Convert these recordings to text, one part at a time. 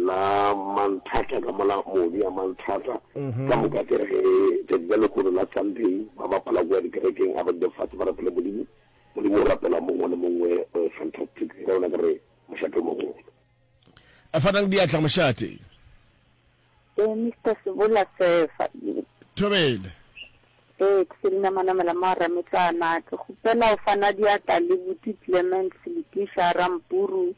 la Manthata ka mola modu ya Manthata ka moka ke re ge tšatši la lekgono la Sunday ba bapala kua dikerekeng a ba dule fatshe ba rapele Modimo Modimo o rapela mongwe le mongwe eh, fantastic ka yona ke re mošate o mogolo a fanang diatla mošate Eh, Mr. Sebola Sefa. thobele Eh, ke se dina manamela mo Rametlana. Ke kgopela o fana diatla le Buti Clement Seletisha Rampuru.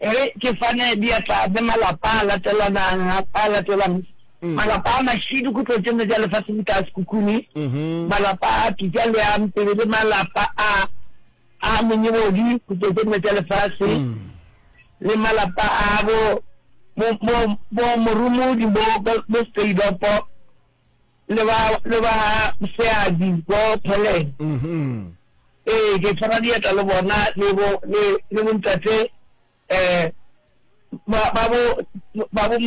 e re ke fane diatla le malapa a latelanang a a latelang malapa a mašidu kutlo tše nne tša lefatshe di ka sekukuni malapa a pitša le a mpele le malapa a a menyebodi kutlo tše nne tša lefatshe le malapa a bo bo bo bo morumodi bo bo bo seidopo le ba le ba seabi bo Peleng mhm ee ke tshwara dieta le bona le bo le le bontate eh ba ba bo ba bo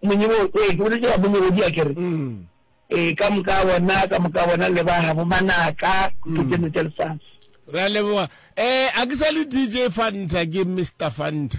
monyebo ee ke boletse ba monyebo di akere mm ee ka moka bona ka moka bona le ba ha bo manaka ke tseno tsa lefase ra leboga eh a ke sa le dj fanta ke mr fanta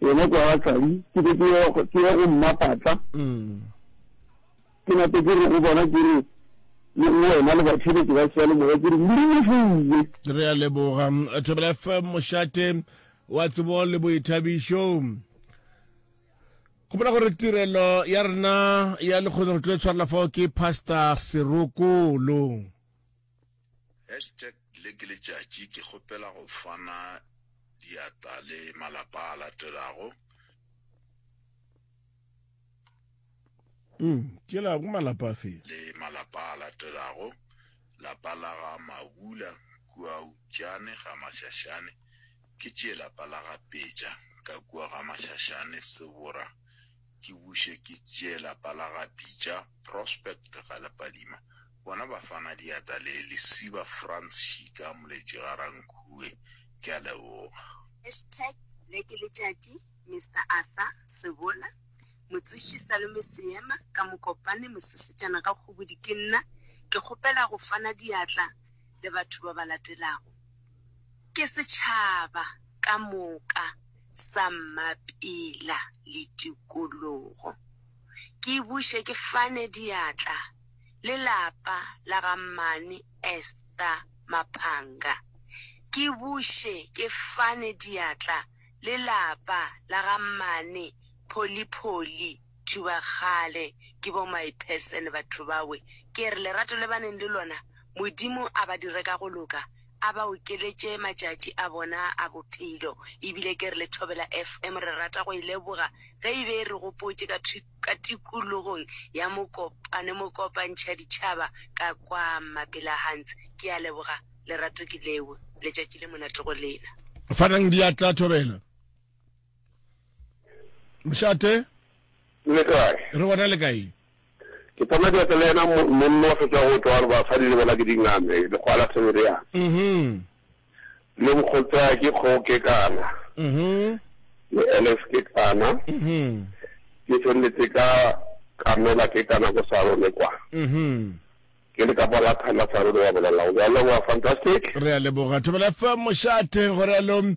Yena kwa gahladi ke be ke ye go mmapatla ke nape ke re go bona ke re le go wena le batšheletše ba seyalemoya ke re modimo fouwe re a leboga thobela fm mošate wa tsebo le boithabišo gopola gore tirelo ya rena ya lekgono re tlo e tshwarela fao ke pastor serokolo Hashtag Le ke letšatši ke kgopela go fana diatla le malapa a latelago. Mm, ke la go malapa a fe? Le malapa a latelago, lapa la ga Mabula kua Utšane ga Mashashane, ke tšee lapa la ga Peja ka kua ga Mashashane Sebora Ke buše ke tšee lapa la ga Pitša, Prospect ga le Padima, bona ba fana diata le lesiba Frans Šika, Moletši ga Rankhue. Ke a leboga. Hashtag Le ke letšatši Mister Arthur Sebola Motseši Salome Seema ka Mokopane Mosesejana ga Kgobodi Ke nna ke kgopela go fana diatla le batho ba ba latelago Ke setšhaba ka moka sa mmapela le tikologo. Ke buše ke fane diatla le lapa la ga Mmane Esther Maphanga. Ke buše ke fane diatla le lapa la ga Mmane Pholipholi Batho ba kgale ke bo my person batho bawe kere lerato le baneng le lona Modimo a ba dire ka go loka a ba okeletše matšatši a bona a bophelo ebile kere le Thobela FM re rata go e leboga ge e be e re gopotše ka ka tikologong ya Mokopane mokopantšha ditšhaba ka kwa Mapelahans ke a leboga lerato ke leo letšatši le monate go lena. Fanang diatla Thobela. mošate le kae re gona le kae ke tsama diatla le yena monno wa fetsa go tšwa gore basadi le bona ke dingame lekgoa la thebele yang mhm. le nkgotsa ke kgoke kana mhm. le ls ke kana mhm. ke feleletse ka kamela ke kana ko sarone kwa ke le kapa la thanda sarone wa bolela o a leboga fantastic re a leboga thobela fa mošate gore along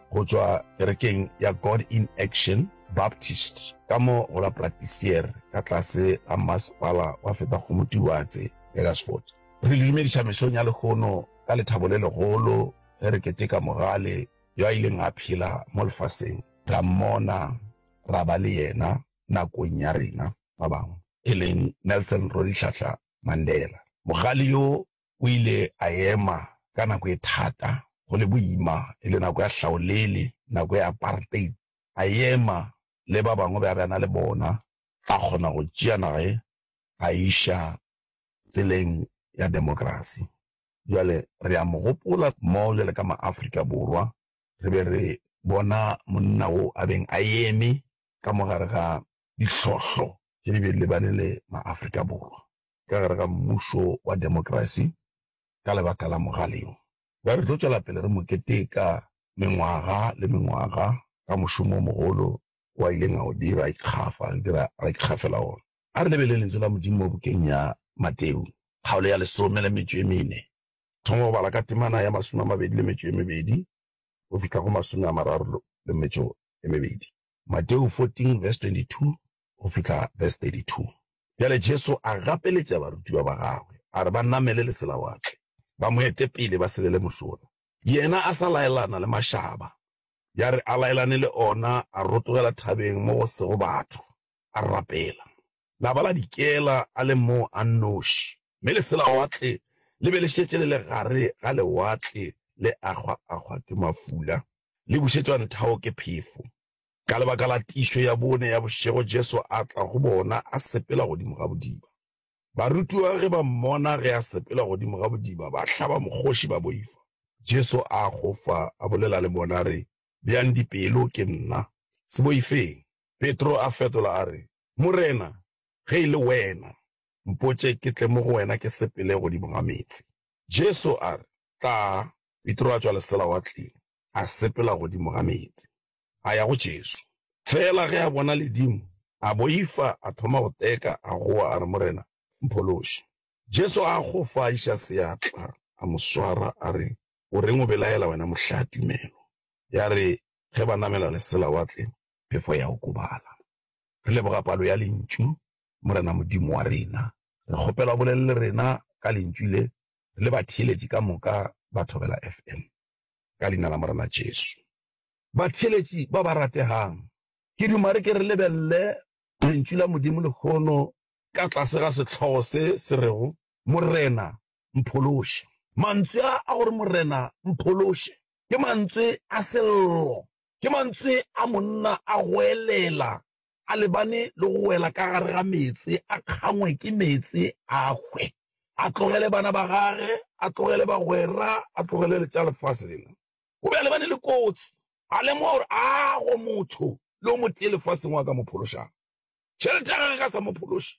go tšwa kerekeng ya God in Action Baptist ka mo go la Platisier ka tlase ga masepala wa Fetagomutiwatse, Eggersford. Re le dumediša mesong ya lehono ka lethabo le legolo ge re keteka Mogale yo a ileng a phela mo lefaseng, ra mmona, ra ba le yena nakong ya rena ba bangwe, e leng Nelson Rolihlahla Mandela. Mogale yo o ile a ema ka nako e thata, go le boima, e le nako ya hlaolele, nako ya apartheid, a ema le ba bangwe be a be a na le bona, a kgona go tšea naga ye a e iša tseleng ya demokrasi. Bjale re a mo gopola mo bjale ka maAfrika Borwa, re be re bona monna wo a beng a eme ka mo gare ga dihlohlo tše di be di lebane le maAfrika Borwa. ka gare ga mmušo wa demokrasi ka lebaka la mogale wo. Ba re tlo tšwela pele re mo keteka mengwaga le mengwaga ka mošomo o mogolo wo a ileng a o dira, a ikgafa, re dira, ra ikgafela wona. A re lebelele Lentsu la Modimo mo bukeng ya Mateu, kgaolo ya lesome le metšo e mene, thoma go bala ka temana ya masome a mabedi le metšo e mebedi go fihla go masome a mararo le metšo e mebedi. Mateo 14 verse 22 go fihla verse 32. Bjale Jesu a gapeletša barutiwa ba gagwe, a re ba namele leselawatle, ba mo ete pele ba selele mošola. Yena a sa laelana le mašaba, ya re a laelane le ona, a rotogela thabeng mo go sego batho, a rapela. La ba la dikela a le mo a nnoši, mme leselawatle le be le šetše le le gare ga lewatle le akgwa-akgwa ke mafula, le bušetšwa nthao ke phefo. Ka lebaka la tiišo ya bone ya bošego Jesu a tla go bona a sepela godimo ga bodiba. Barutiwa ge ba mmona ge a sepela godimo ga bodiba ba hlaba mokgoši ba boifa. Jesu a akgofa a bolela le bona a re, Bjang dipelo, ke nna. Se boifeng. Petro a fetola a re, Morena, ge e le Wena, mpotše ke tle mo go Wena ke sepele godimo ga meetse. Jesu a re, Tla. Petro a tšwa leselawatleng, a sepela godimo ga meetse, a ya go Jesu. Feela ge a bona ledimo, a boifa, a thoma go teka, a goa, a re, Morena, mphološe. Jesu a akgofa, a iša seatla, a mo swara, a re, O reng o belaela, wena mohlaa tumelo? Yare ge ba namela leselawatle, phefo ya okobala. Re leboga palo ya Lentšu, Morena Modimo wa rena. Re kgopela o bolele le rena ka Lentšu le, le batheeletši ka moka ba Thobela FM, ka Leina la Morena Jesu. Batheeletši ba ba rategang, ke duma re ke re lebelele Lentšu la Modimo lehono ka tlase ga sehlogo se se rego, Morena, mphološe. Mantswe a a gore Morena, mphološe, ke mantswe a sello Ke mantswe a monna a goelela a lebane le go wela ka gare ga meetse, a kgangwe ke meetse a hwe, a tlogele bana ba gage, a tlogele bagwera, a tlogele le tša lefase lela. O be a lebane le kotsi, a lemoga gore a go motho le o motee lefaseng o a ka mo phološago. Tšhelete ya gagwe e ka sa mo phološe,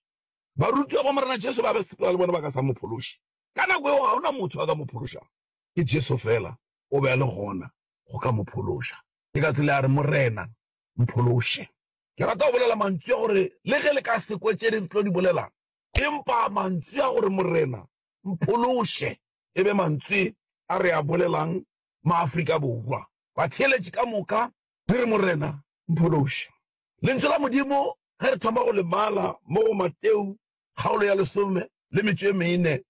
barutiwa ba Morena Jesu ba be sepela le bona ba ka sa mo phološe. Ka nako yeo ga go na motho a ka mo phološago, ke Jesu feela o be a le gona go ka mo phološa. Ke ka tsela ya re, Morena, mphološe. Ke rata go bolela mantswi a gore, le ge le ka se kwe tše re tlo di bolelang, empa mantswi a gore, Morena, mphološe, e be mantswi a re a bolelang maAfrika Borwa. Batheeletši ka moka le re, Morena, mphološe. Lentšu la Modimo, ge re thoma go le bala mo go Mateu, kgaolo ya lesome le metšo e mene,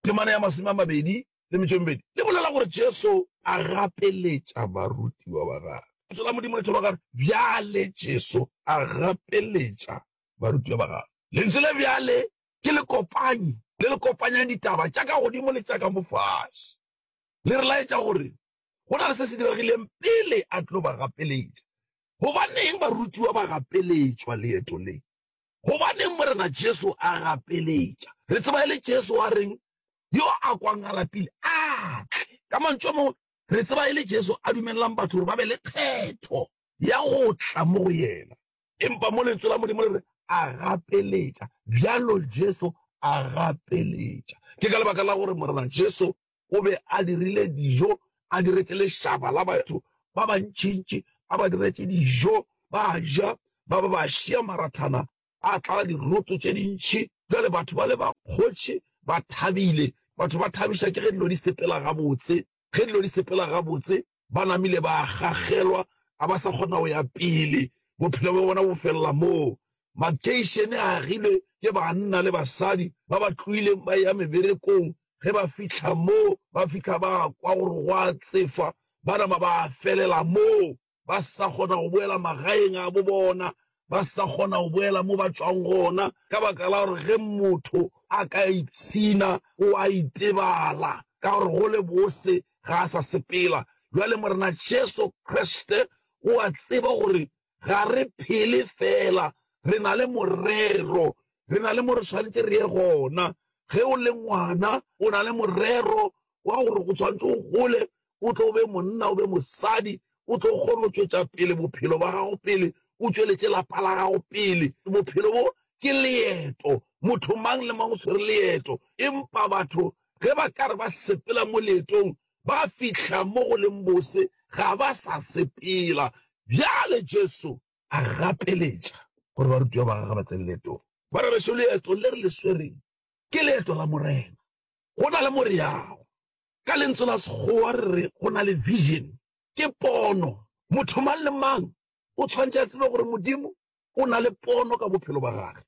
Temana ya Masome a Mabedi le Metšo e Mebedi le bolela gore Jesu a gapeletša barutiwa ba gagwe. Lentšu la Modimo le tšholwa ka gore bjale Jesu a gapeletša barutiwa ba gagwe. Lentšu le bjale ke lekopanyi le le kopanyang ditaba tša ka godimo le tša ka mo fase. Le re laetša gore go na le se se diregileng pele a tlo ba gapeletša. Gobaneng barutiwa ba gapeletšwa leeto le? Gobaneng Morena Jesu a gapeletša? Re tseba e le Jesu a reng, Yo a kwang a lapile, a tle. Ka mantšu a mangwe, re tseba e le Jesu a dumelelang batho gore ba be le kgetho ya go tla mo go yena. Empa mo Lentswe la Modimo le re, A gapeletša. Bjalo Jesu a gapeletša. Ke ka lebaka la gore Morena Jesu O be a dirile dijo, a diretše lešaba la batho ba bantšintši, a ba diretše dijo, ba ja, ba ba ba šia marathana a tlala diroto tše dintši. Bjale batho ba le ba kgotše ba thabile. Batho ba thabiša ke ge dilo di sepela gabotse. Ge dilo di sepela gabotse, ba namile ba gagelwa, ga ba sa kgona go ya pele, bophelo bja bona bo felela moo. Makeišene a agilwe ke banna le basadi ba ba tloileng ba eya meberekong, ge ba fihla moo ba fihla ba kwa gore go a tsefa, ba nama ba felela moo ba sa kgona go boela magaeng a bo bona, ba sa kgona go boela mo ba tšwago gona ka baka la gore ge motho a ka ipshina o a itebala ka gore go le bose ga a sa sepela. Bjale Morena Jesu Kriste o a tseba gore ga re phele feela, re na le morero, re na le mo re swanetše re ye gona. Ge o le ngwana o na le morero wa gore o swanetše o gole o tlo o be monna, o be mosadi, o tlo kgona go tšwetša pele bophelo ba gago pele, o tšweletše lapa la gago pele. Bophelo bo ke leeto, motho mang le mang o swere leeto, empa batho ge ba ka re ba sepela mo leetong, ba fihla mo go leng bose, ga ba sa sepela. Bjale Jesu a gapeletša gore barutiwa ba gagwe ba tsene leetong. Bana bešo, leeto le re le swereng ke leeto la Morena. Go na le mo re yago, Ka lentswe la Sekgowa re re go na le vision, ke pono. Motho mang le mang o tshwanetse a tsebe gore Modimo o na le pono ka bophelo ba gage.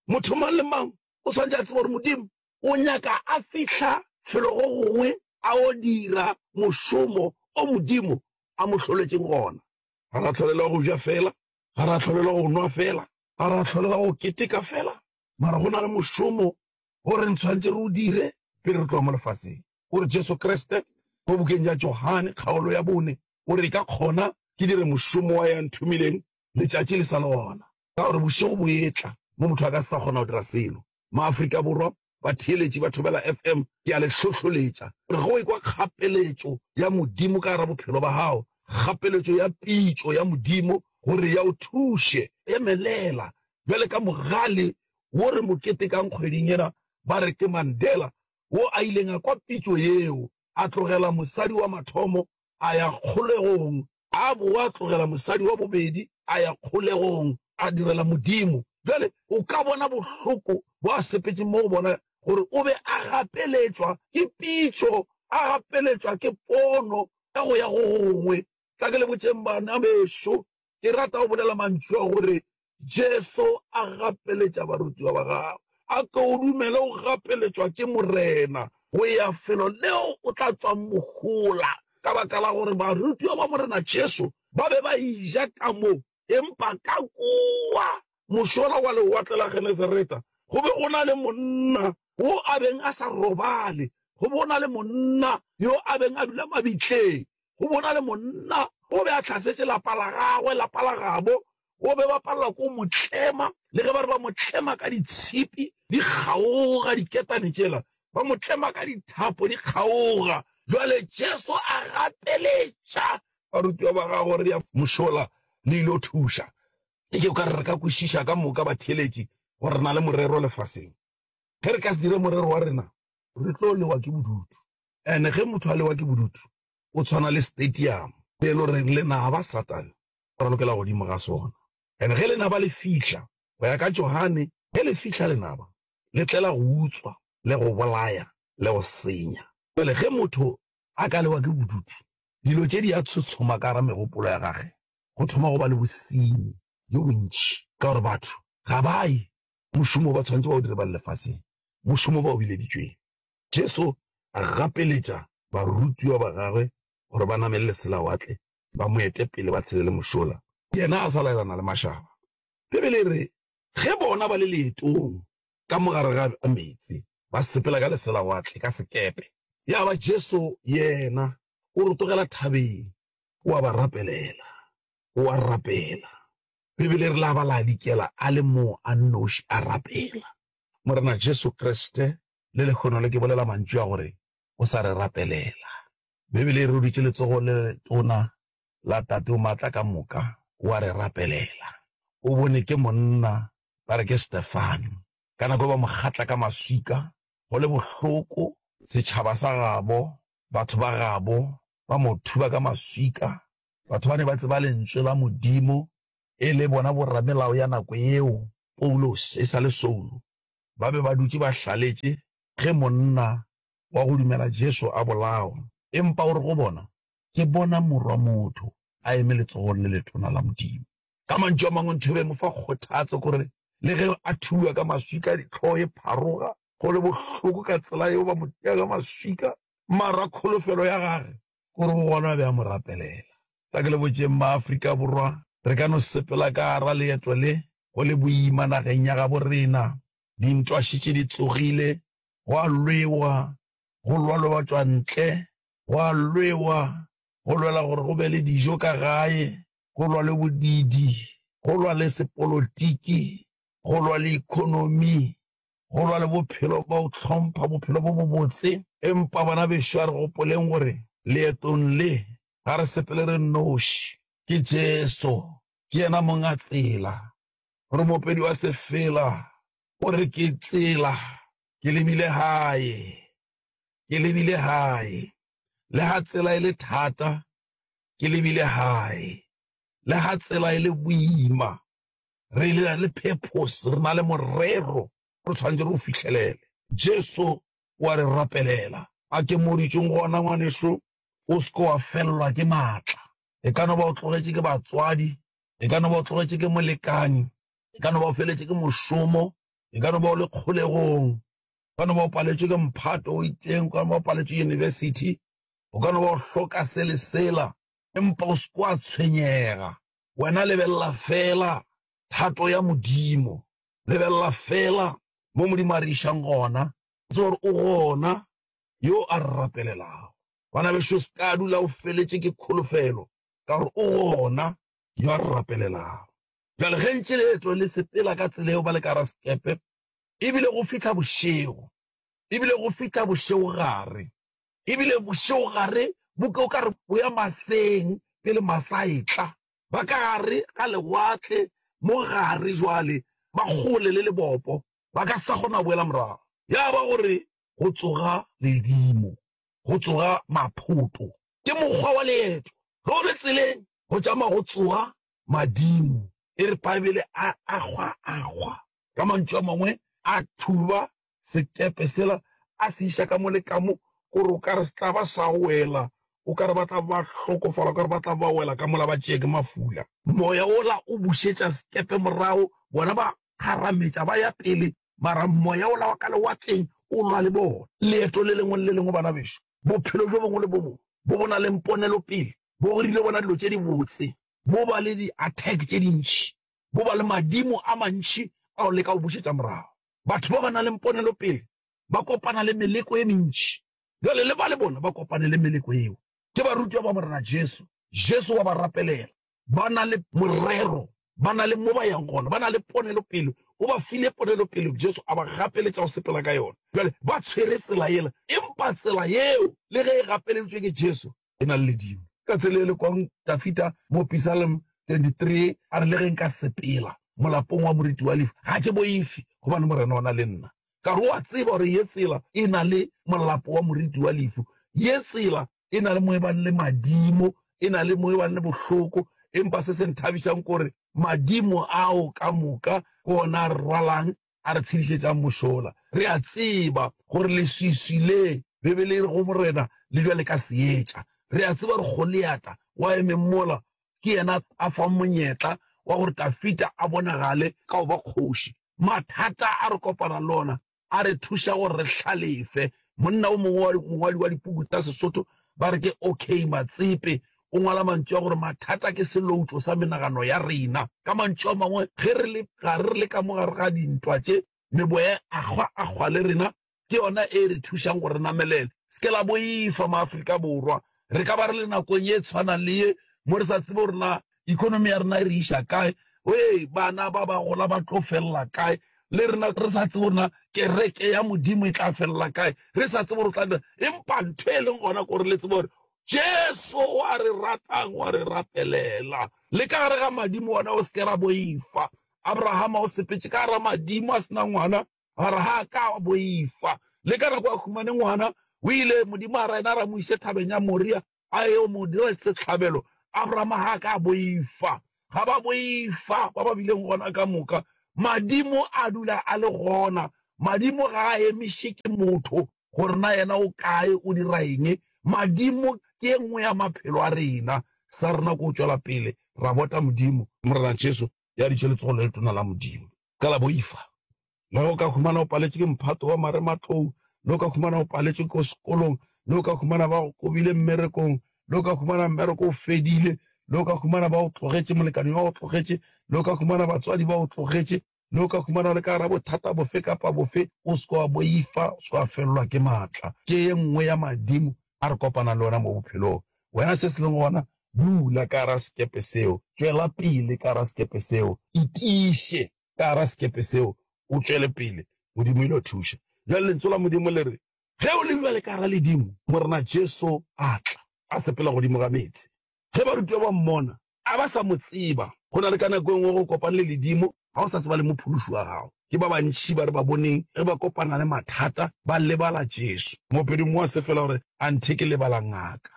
Motho mang le mang o tshwanetse a tsebe gore Modimo o nyaka a fihla felo go gongwe a o dira mošomo o Modimo a mo hloletšeng gona. Ga ra tlholelwa go ja fela, ga ra tlholelwa go nwa fela, ga ra tlholelwa go keteka fela, mara go na le mošomo gore re ntshwanetse re o dire pele re tloga mo lefaseng. O re Jesu Kriste, mo bukeng ya Johane kgaolo ya bone, o re, Ka kgona ke dire mošomo wa ya nthomileng letšatši le sa le gona, ka gore bošego bo etla mo motho a ka se sa kgona go dira selo. Maafrika Borwa, batheeletši ba Thobela FM, ke a le hlohloletša gore ge o ekwa kgapeletšo ya Modimo ka gare bophelo ba gago, kgapeletšo ya pitšo ya Modimo gore ya o thuše, emelela bjale ka mogale wo re mo ketekang kgweding yena ba re ke Mandela wo a ileng a kwa pitšo yeo a tlogela mosadi wa mathomo a ya kgolegong, a boa a tlogela mosadi wa bobedi a ya kgolegong a direla Modimo. Bjale o ka bona bohloko bo a sepetšeng mo go bona gore o be a gapeletšwa ke pitšo, a gapeletšwa ke pono ya go ya go gongwe. Tla ke le botšeng bana bešo, Ke rata go bolela mantšu a gore Jesu a gapeletša barutiwa ba gagwe, A ko o dumele o gapeletšwa ke Morena go ya felo leo o tla tšwang mohola. Ka baka la gore barutiwa ba Morena Jesu ba be ba eja ka mo, empa ka kua mošola wa Lewatle la Genesareta go be go na le monna wo a beng a sa robale, go be go na le monna yo a beng a dula mabitleng. go bona le monna o be a hlasetše lapa la gagwe, lapa la gabo o be ba palelwa ke go mo tlema, le ge ba re ba mo tlema ka ditshipi di kgaoga, diketane tšela ba mo tlema ka dithapo di kgaoga. Bjale Jesu a gapeletša barutiwa ba gagwe gore, Re mošola le ile go thuša. Ke tšeo ka re re ka kwešiša ka moka batheeletši gore re na le morero lefaseng. Ge re ka se dire morero wa rena, re tlo lewa ke bodutu. Ene ge motho a lewa ke bodutu, o tshwana le stadium se e le goreng lenaba, Satane, o ralokela godimo ga sona. Ene ge lenaba le fihla, go ya ka Johane, ge le fihla lenaba le tlela go utswa le go bolaya le go senya. Bjale ge motho a ka lewa ke bodutu, dilo tše di a tshotshoma ka gare megopolo ya gage, go thoma go ba le bosenyi bjo bontši, ka gore batho ga ba ye mošomo o ba tshwanetše ba o dire ba le lefaseng, mošomo o ba o bileditšweng. Jesu a gapeletša barutiwa ba gagwe gore ba namelele selawatle ba mo ete pele ba tshele le mošola, yena a sa laelana le mašaba. Bibele e re, Ge bona ba le leetong ka mo gare ga meetse, ba sepela ka leselawatle, ka sekepe. Ya ba Jesu yena o rotogela thabeng, o a ba rapelela, o a rapela. Bibele e re, La ba la dikela a le mo a nnoši a rapela. Morena Jesu Kriste le lekgono le ke bolela mantšu a gore o sa re rapelela. Beibele e re o dutše letsogo le letona la Tate o Maatla ka moka, o a re rapelela. O bone ke monna ba re ke Stefano, ka nako e ba mo kgatla ka maswika go le bohloko, setšhaba sa gabo, batho ba gabo ba mo thuba ka maswika, batho ba ne ba tseba Lentswe la Modimo, e le bona boramelao ya nako yeo, Paulose e sa le Saulo. ba be ba dutše ba hlaletše ge monna wa go dumela Jesu a bolawa. Empa o re go bona, Ke bona Morwa motho a eme letsogong le letona la Modimo. Ka mantšu a mangwe, ntho e be e mo fa kgothatso ke gore le ge a thuwa ka maswika, hlogo e pharoga, go le bohloko ka tsela yeo ba mo tea ka maswika, mara kholofelo ya gage Gore go gona a be a mo rapelela. Ka ke le botšeng ba Afrika Borwa, re ka no sepela ka gara leeto le, go le boima nageng ya gabo rena. Dintwa šetše di tsogile, go a lwewa, go lwalwe batšwa ntle, go a lwewa, go lwela gore go be le dijo ka gae, go lwalwe bodidi, go lwale sepolotiki, go lwale economy, go lwa le bophelo ba go hlompha bophelo bo bobotse. Empa bana bešo, a re gopoleng gore leetong le ga re sepele re nnoši. Ke Jesu, ke yena Monga Tsela. Gore Moopedi wa sefela o re, Ke Tsela, ke lebile Gae, ke lebile Gae. Le ga tsela e le thata, ke lebile Gae. Le ga tsela e le boima, re le na le purpose, re na le morero o re tshwanetse re o fihlelele. Jesu o a re rapelela a ke mo ditšong, Gona ngwanešu, o se ke wa felelwa ke maatla. E ka no ba o tlogetše ke batswadi, e ka no ba o tlogetše ke molekane, e ka no ba o feletše ke mošomo, e ka no ba o le kgolegong, o ka no ba o paletšwe ke mphato o itseng, o ka no ba o paletšwe yunibesithi, o ka no ba o hloka se le sela. Empa o se ke wa tshwenyega, Wena lebelela feela thato ya Modimo. Lebelela feela mo Modimo a re išang gona. O tseba gore o gona yo a re rapelelago. Bana bešo, o se ka dula o feletše ke kholofelo, ka gore o gona yo a re rapelelago. Bjale ge ntše leeto le sepela ka tsela yeo ba le ka gara sekepe, e bile go fihla bošego, e bile go fihla bošegogare, E bile bošegogare bo ke o ka re bo ya maseng pele masa a etla. Ba ka gare ga lewatle mo gare bjale, ba kgole le lebopo, ba ka sa kgona go boela morago. Ya ba go re go tsoga ledimo, go tsoga maphoto. Ke mokgwa wa leeto. Ge o le tseleng, go tšama go tsoga madimo. E re Bibele, a akgwa-akgwa. Ka mantšu a mangwe, a thuba sekepe sela, a se iša ka mo le ka mo, gore o ka re se tla ba sa wela, o ka re ba tla ba hlokofala, o ka re ba tla ba wela ka mola ba tšee ke mafula. Moya wola o bušetša sekepe morago, bona ba kgarametša ba ya pele, mara moya wola wa ka lewatleng o lwa le bona. Leeto le lengwe le le lengwe, bana bešo, bophelo bjo bongwe le bo bongwe bo bo na le ponelopele bo rile bona dilo tše dibotse, bo ba le di-attack tše dintši. bo ba le madimo a mantši ao le ka go bušetša morago. Batho ba ba na le ponelopele ba kopana le meleko e mentši. Bjale le ba le bona ba kopane le meleko yeo. Ke barutiwa ba Morena Jesu. Jesu wa ba rapelela. Ba na le morero. Ba na le mo ba yang gona. Ba na le ponelopele. O ba file ponelopele, Jesu a ba gapeletša go sepela ka yona. Bjale ba tshwere tsela yela. Empa tsela yeo, le ge e gapeleditšwe ke Jesu, e na le ledimo. Ka tsela e le kong Dafita mo Pisalm 23 a re, Le ge nka sepela molapong wa moriti wa lehu, ga ke boifi, gobane Morena o na le nna. Ka re o a tseba gore ye tsela e na le molapo wa moriti wa lehu, ye tsela e na le mo e bang le madimo, e na le mo e bang le bohloko, empa se se nthabišang ke gore madimo ao ka moka ke ona a re rwalang a re tshedišetšang mošola. Re a tseba gore leswiswi le Bibele e re go Morena le bjale ka seetša. Re a tseba gore Goliata wa emeng mola ke yena a fang monyetla wa gore Dafida a bonagale ka go ba kgoši. Mathata a re kopana le ona a re thuša gore re hlalefe. Monna o mongwe wa mongwadi wa dipuku tša Sesotho ba re ke OK. Matsepe O ngwala mantšu a gore mathata ke seloutšo sa menagano ya rena. Ka mantšu a mangwe, ge re le gare re le ka mo gare ga dintwa tše, meboya e akgwa-akgwa le rena ke yona e re thušang gore re namelele. Se ke la boifa, maAfrika Borwa. Re ka ba re le nakong ye tshwanang le ye mo re sa tsebe gore na ekonomi ya rena e re iša kae, ee, bana ba ba gola ba tlo felela kae, le rena re sa tsebe gore na kereke ya Modimo e tla felela kae, re sa tsebe gore o tla dira eng. Empa ntho e leng gona ke gore le tsebe gore Jesu o a re ratang, o a re rapelela le ka gare ga madimo. Wena o se ke ra boifa. Abrahama o sepetše ka gare ga madimo a se na ngwana, mara ga a ka a boifa. Le ka nako a humane ngwana, o ile Modimo a ra yena ra mo ise thabeng ya Moria a yo mo dira sehlabelo. Abrahama ga a ka a boifa. Ga ba boifa ba ba bileng gona ka moka. Madimo a dula a le gona. Madimo ga a emiše ke motho. gore na yena o kae, o dira eng. Madimo ke e nngwe ya maphelo a rena. Sa rena ke go tšwela pele ra bota Modimo. Morena Jesu ya dutše letsogo le letona la Modimo ka la boifa. Le ge o ka humana o paletšwe ke mphato wa marematlou, le o ka humana o paletšwe ko sekolong, le o ka humana ba go kobile mmerekong, le o ka humana mmereko o fedile, le o ka humana ba go tlogetše, molekane wa go tlogetše, le o ka humana batswadi ba go tlogetše, le o ka humana le ka gara bothata bofe kapa bofe, o seke wa boifa, o seke wa felelwa ke maatla. Ke ye nngwe ya madimo a re kopanang le ona mo bophelong. Wena se se leng gona, dula ka gara sekepe seo, tšwela pele ka gara sekepe seo, itiiše ka gara sekepe seo, o tšwele pele, Modimo o ile go thuša. Bjale Lentso la Modimo le re, Ge o le bjale ka gara ledimo, Morena Jesu a tla, a sepela godimo ga meetse. Ge barutiwa ba mmona, a ba sa mo tseba. Go na le ka nako e nngwe go kopane le ledimo ga o sa tseba le mophološi wa gago. Ke ba bantši ba re ba boneng ge ba kopana le mathata ba lebala Jesu. Moopedi mongwe wa sefela o re, Anthe ke lebala ngaka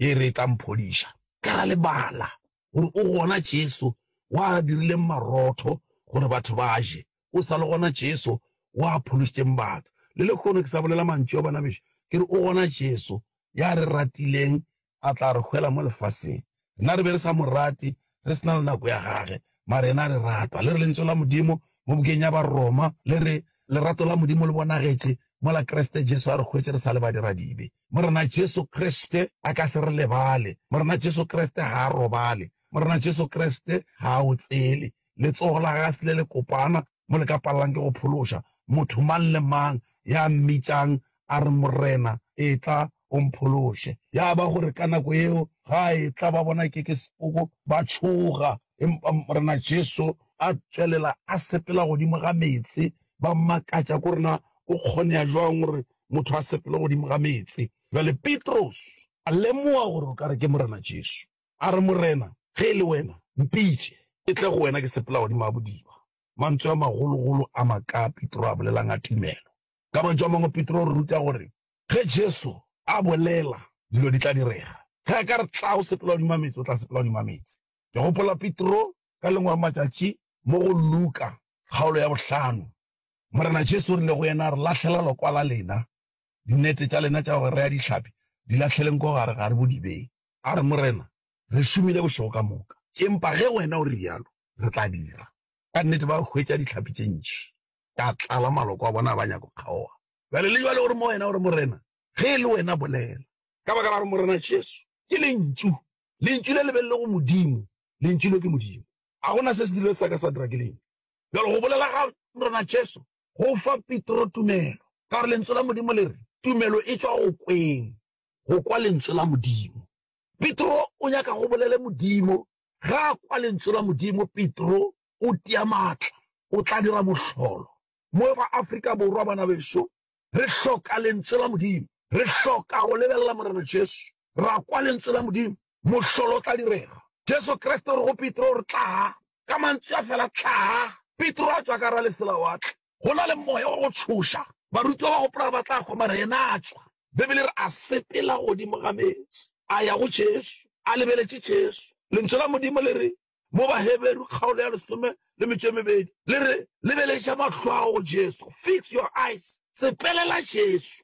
ye e re e tla mphodiša. Ka ra lebala gore o gona Jesu wa a dirileng marotho gore batho ba je. Go sa le gona Jesu o a phološitšeng batho. Le lehono ke sa bolela mantšu a bona bešo, ke re, O gona Jesu, ya re ratileng, a tla re hwela mo lefaseng. Rena re be re sa mo rate, re se na le nako ya gage, mara yena a re rata. Le re Lentso la Modimo mo bukeng ya Baroma le re, Lerato la Modimo le bonagetše mola Kriste Jesu a re hwetše re sa le badiradibe. Morena Jesu Kriste a ka se re lebale. Morena Jesu Kriste ga a robale. Morena Jesu Kriste ga a otsele. Letsogo la gase le lekopana, mo le ka palelang ke go phološa motho mang le mang ya mmitšang a re, Morena, etla o mphološe. Ya ba gore ka nako yeo ga a etla, ba bona e ke ke sepoko, ba tšhoga. Empa Morena Jesu a tšwelela a sepela godimo ga meetse, ba mmakatša, ko re, Na go kgonega bjang gore motho a sepele godimo ga meetse? Bjale Petros a lemoga gore o ka re ke Morena Jesu. A re, Morena, ge e le wena, mpitše ke tle go wena ke sepela godimo ga bodiba. Mantswe a magologolo a makaa Petro a bolelang a tumelo! Ka mantšu a mangwe, Petro o re ruta gore ge Jesu a bolela, dilo di tla direga. Ge a ka re, Tla o sepela godimo ga meetse, o tla sepela godimo ga meetse. Ke gopola Petro ka lengwe ga matšatši mo go Luka kgaolo ya bohlano. Morena Jesu o rile go yena, Re lahlela lokwa la lena, dinete tša lena tša go rea dihlapi, di lahleleng ko gare gare bodibeng. A re, Morena, re šomile bošego ka moka, empa ge Wena o re bjalo, re tla dira. Ka nnete ba hwetša dihlapi tše ntši tša tlala, maloko a bona a ba nyaka go kgaoga. Bjale le bjale o re, Moena o re, Morena, ge e le Wena, bolela. Ka baka la gore Morena Jesu ke Lentšu, Lentšu le le be le le go Modimo, Lentšu leo ke Modimo. A go na se se dirilwe sa ka sa dira ke Lentšu? Bjale go bolela ga Morena Jesu go fa Petro tumelo, ka gore Lentswe la Modimo le re, Tumelo e tšwa go kweng. go kwa Lentso la Modimo. Petro o nyaka go bolele Modimo. Ga a kwa Lentso la Modimo, Petro o tia maatla, o tla dira mohlolo. Mo fa Afrika Borwa, bana beso, re hloka Lentso la Modimo. Re hloka go lebelela Morena Jesu, ra kwa Lentso la Modimo, Mohlolo o tla direga. Jesu Kriste o re go Petro, o re, Tlaa! Ka mantswe a fela, Tlaa! Petro a tšwa ka gare leselawatle. Go na le moya wa go tšhoša. Barutiwa ba gopola gore ba tla kgwa, mara yena a tšwa. Beibele e re a sepela godimo ga meetse, a ya go Jesu, a lebeletše Jesu. Lentšu la Modimo le re mo Baheberu kgaolo ya lesome le metšo e mebedi, le re, Lebeleša mahlo a gago go Jesu, fix your eyes, sepelela Jesu.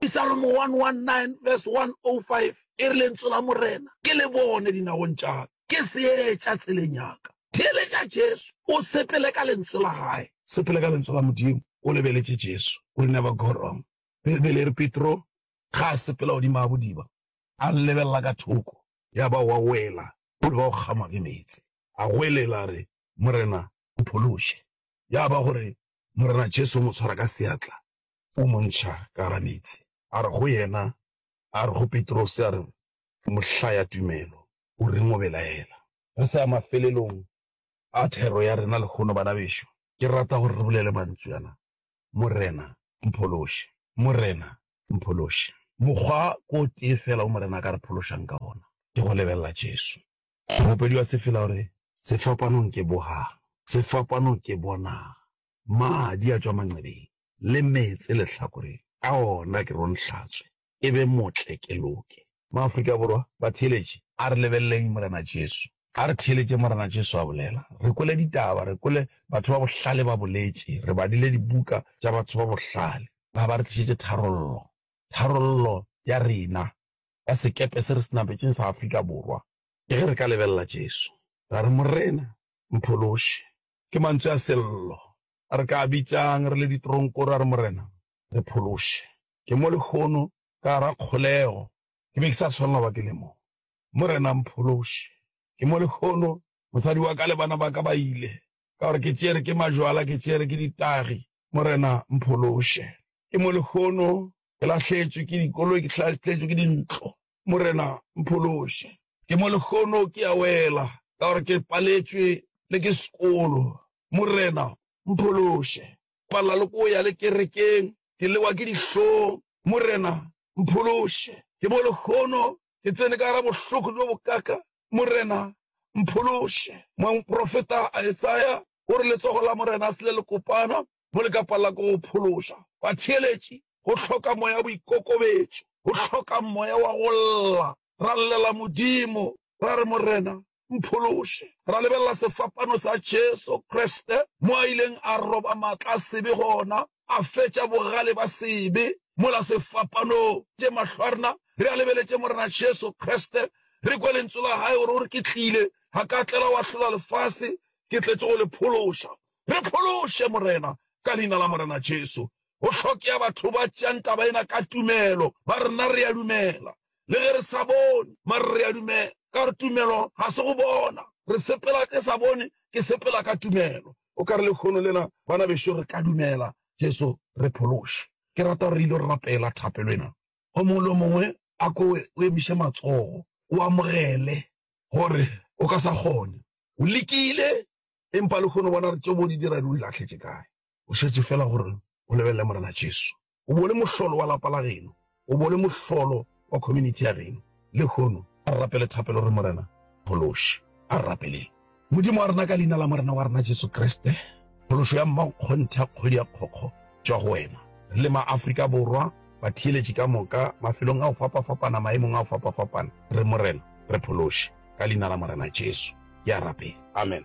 Psalmo 119 verse 105 e re, Lentswe la Morena ke le bone dinagong tša ka, ke seetša tseleng ya ka. Theeletša Jesu, o sepele ka Lentswe la Gae. Sepele ka Lentswe la Modimo o lebeletše Jesu. You will never go wrong. Beibele e re Petro ge a sepela godimo ga bodiba, a lebelela ka thoko, ya ba o a wela, o leba go kgama ke meetse. A goelela a re, Morena, mphološe. Ya ba gore Morena Jesu o mo tshwara ka seatla, o mo ntšha ka gara meetse, a re go yena, a re go Petrose, a re, Mohlaya tumelo, o reng o belaela? Re sa ya mafelelong a thero ya rena lehono, bana bešo, ke rata gore re bolele mantšu ana, Morena, mphološe! Morena, mphološe! Mokgwa ke o tee feela wo Morena a ka re phološang ka wona, ke go lebelela Jesu. Mopedi wa sefela o re, Sefapanong ke bohang, sefapanong ke bonang. Madi a tšwa mancebeng le meetse lehlakoreng a ona ke ronhlatswe e be motle ke loke. Maafrika Borwa, batheeletše, a re lebelleng Morena Jesu. A re theeletšeng Morena Jesu a bolela, re kwele ditaba, re kwele batho ba bohlale ba boletše, re badile dibuka tša batho ba bohlale ba ba re tlišetše tharollo, tharollo ya rena ya sekepe se re se nametseng sa Afrika Borwa. Ke ge re ka lebelela Jesu, ra re, Morena, mphološe. Ke mantswe a Sello. A re ka a bitšang re le ditoronkoro a re, Morena, re phološe. Ke mo lehono, ka gara kgolego, ke be ke sa swanela go ba ke le mo. Morena, mphološe. Ke mo lehono, mosadi wa ka le bana ba ka ba ile, ka gore ke tšere ke majwala, ke tšere ke ditagi. Morena, mphološe. Ke mo lehono, ke lahletšwe ke dikoloi, ke lahletšwe ke dintlo. Morena, mphološe. Ke mo lehono ke a wela, ka gore ke paletšwe le ke sekolo. Morena, mphološe. Palela le ko ya le kerekeng, ke lewa ke dihlong. Morena, mphološe. Ke mo lehono ke tsene ka gara bohloko bjo bokaka. Morena, mphološe. Moprofeta Isaya o re, Letsogo la Morena se le lekopana, mo le ka palela ko go phološa batheeletši, go hloka moya wa boikokobetšo, go hloka moya wa go lla. Ra llela Modimo, ra re, Morena, mphološe. Ra lebelela sefapano sa Jesu Kriste, mo a ileng a roba maatla a sebe gona, a fetša bogale ba sebe mola sefapanong. Tše mahlo a rena re a lebeletše Morena Jesu Kriste, re kwe Lentswe la Gae gore o re, Ke tlile, ga ka tlela go ahlola lefase, ke tletše go le phološa. Re phološe, Morena, ka Leina la Morena Jesu. Go hlokea batho ba tšeang taba ena ka tumelo, ba re, Nna re a dumela, le ge re sa bone, mare re a dumela. Ka gore tumelo ga se go bona. Re sepela ke sa bone, ke sepela ka tumelo. O ka re lekhono lena, bana bešo, re ka dumela. Jesu, re phološe. Ke rata gore re il'o rapela thapelo ena. O mongwe le o mongwe a ko o emiše matsogo, o amogele gore o ka sa kgone, o lekile, Empa lehono bona re tše bo di dira di o lahletše kae. O šetše feela gore o lebelele Morena Jesu. O bo le mohlolo wa lapa la geno. O bo le mohlolo wa community ya geno. Lehono a re rapele thapelo re Morena phološe. A re rapeleng. Modimo wa rena, ka Leina la Morena wa rena Jesu Kriste, phološo ya mmankgonthe ya kgwedi ya kgokgo, tšwa go wena. Re le maAfrika Borwa, batheeletši ka moka, mafelong a go fapafapana, maemong a go fapafapana, re, Morena, re phološe. Ka Leina la Morena Jesu, ke a rapela. Amen.